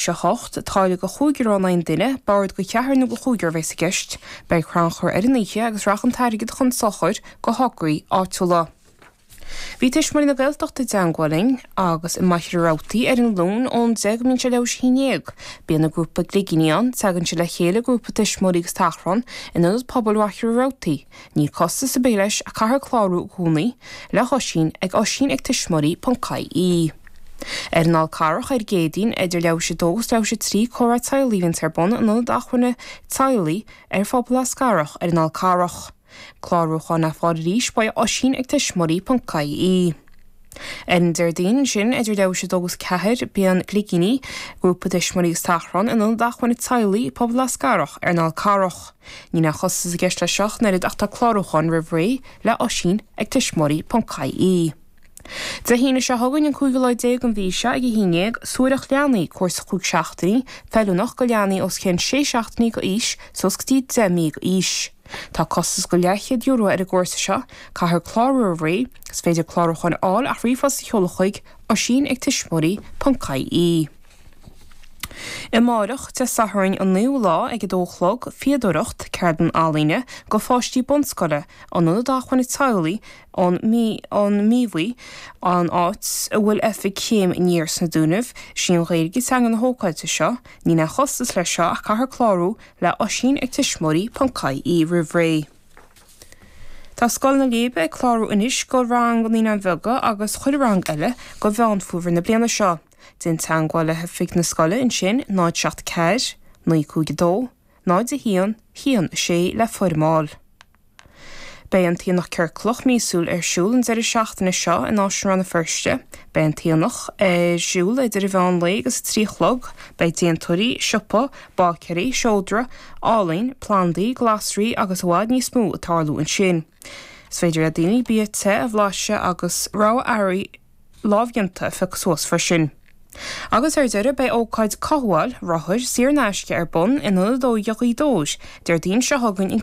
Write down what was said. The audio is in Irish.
seacht, táille go chúig euro an duine, bord go cheathrar nó go chúigear a bheas i gceist. Beidh crannchur ar an oíche agus rachaidh an t-airgead chun sochair go thograí áitiúla. Bhí Tuismitheoirí na Gaeltachta i dteangmháil linn agus i Machaire Rabhartaigh ar an Luan ón deich go mbíonn sé leathuair tar éis a haon dhéag bíonn an grúpa Gligíní ann, teagann siad le chéile, grúpa tuismitheoirí agus tachrán, in Ionad Pobail Mhachaire Rabhartaigh. Níl costas ar bith leis ach caithfear clárú i gcónaí le hOisín ag Oisín ag tuismitheoirí ponc ie. Ar an Fhál Carrach ar an gCéadaoin idir leathuair tar éis a dó agus leathuair tar éis a trí comhrá teaghlaigh a bhíonns ar bun in Ionad Acmhainne Teaghlaigh Phobal Eascarrach ar an Fhál Carrach. Clárúcháin le fáil arís, le hOisín ag tuismitheoirí ponc ie. Ar an Déardaoin ansin idir leathuair tar éis a dó agus ceathair bíonn Gligíní, grúpa tuismitheoirí agus tachrán, in ionad acmhainne teaghlaigh Phobal Eascarrach ar an Fhál Carrach. Níl aon chostas i gceist leis seo ach an oiread ach tá clárúchán roimh ré le Oisín ag tuismitheoirí.ie. Dé hAoine seo chugainn an cúigiú lá déag den mhí seo ag a haon dhéag, Suathaireacht Leanaí, cúrsa cúig seachtainí, feiliúnach do leanaí os cionn sé seachtainí go aois suas go dtí deich mí go aois. Tá costas go leathchéad euro ar an gcúrsa seo. Caithfear clárú roimh ré. Is féidir clárúcháin a fháil ach ríomhphost a sheoladh chuig, oisín ag tuismitheoirí ponc ie. Amáireach, Dé Sathairn an 9ú lá ag 2 a chlog, Fíodóireacht, Ceardlann Ealaíne go pháistí bunscoile, in Ionad Acmhainne Teaghlaigh, i Míobhaigh, an áit a bhfuil oifig Chéim Aniar sna Dúnaibh. Is í an Ghaeilge teanga na hócáide seo. Níl aon chostas leis seo ach caithfear clárú le Oisín ag tuismitheoirí.ie roimh ré Tá Scoil na Leidhbe ag clárú anois go rang na Naíonáin Bheaga agus chuile rang eile go Mheán Fómhair na bliana seo. Déan teagmháil le hoifig na scoile ansin 074 952 01 1 6 le foirm a fháil. Beidh an tAonach Ciorclach míosúil ar siúl an deireadh seachtaine seo in Áislann Rann na Feirste. Beidh an tAonach ar siúl idir a mheán lae agus a trí a chlog. Beidh déantóirí, siopa, báicéirí, seodra, ealaín, plandaí, glasraí agus i bhfad níos mó ag tarlú ansin. Is féidir le daoine bia te a bhlaiseadh agus rogha earraí lámhdhéanta a phiocadh suas freisin. Agus ar deireadh beidh ócáid cothabháil rothair saor in aisce ar bun in Ionad Óige Ghaoth Dobhair Déardaoin seo chugainn in